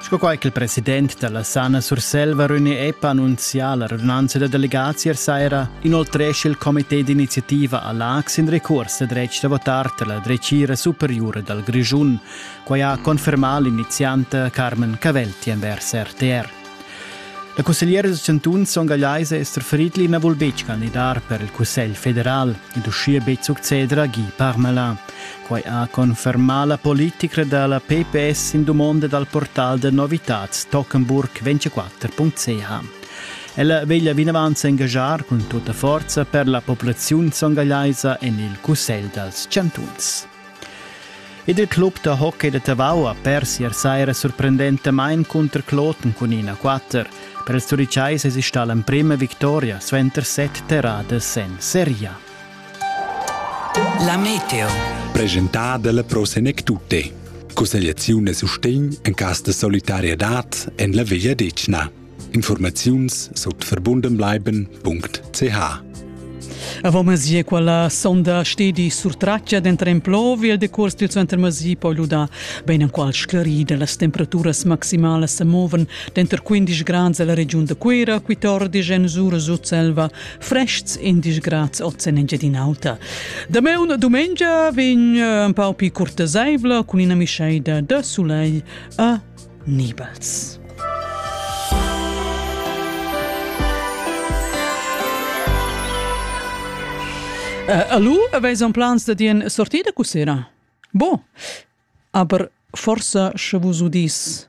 Sco quai ch'il president da la Sana Surselva René Epp ha annunzià la radunanza da delegazier saira, inoltresch il comité d'iniziativa a Laax in recurs da dretg da votar tar la dretgira superiura dal Grischun. Quai ha confermà l'inizianta Carmen Cavelti envers RTR. La cussegliera da Cantun Son Gagliaise Esther Friedli na vul betg candidar per il Cussegl federal ed uschia betg succeder a Guy Parmelin. Quai ha confermà la politica da la PPS in dumonda dal portal da novitads Tockenburg24.ch. Ella veglia vinavant s'engaschar cun tutta forza per la populaziun songalaisa en il Cussegl dals chantuns. Ed il club da hockey da Tavau ha pers ier saira sorprendentamain cunter Kloten cun ina 4. Per ils Turiceis esista l'emprima victoria suenter set terradas en seria. La meteo. Presentada dalla Pro Senec Tutte. Cussegliaziun e sustegn en cas de solidarietad en la Via Decna. Informaziuns sut verbundenbleiben.ch Avant Masi quella sonda stedi surtraccia dentro en plovi il decurs dil center Masi poi luda ben en qual sclarida las temperaturas maximalas se moven dentro 15 gradi alla regiun de Cuira, 14 en Sura Sutselva, Frests in disgrads oz en Engiadin'Alta. Da me una domengia vegn eh, un pau pi curteseivla cun ina mischeida de soleil a Nibels. Uh, allo, aveis un plans da dien sortida cu sera? Bo, aber forsa sche vus udis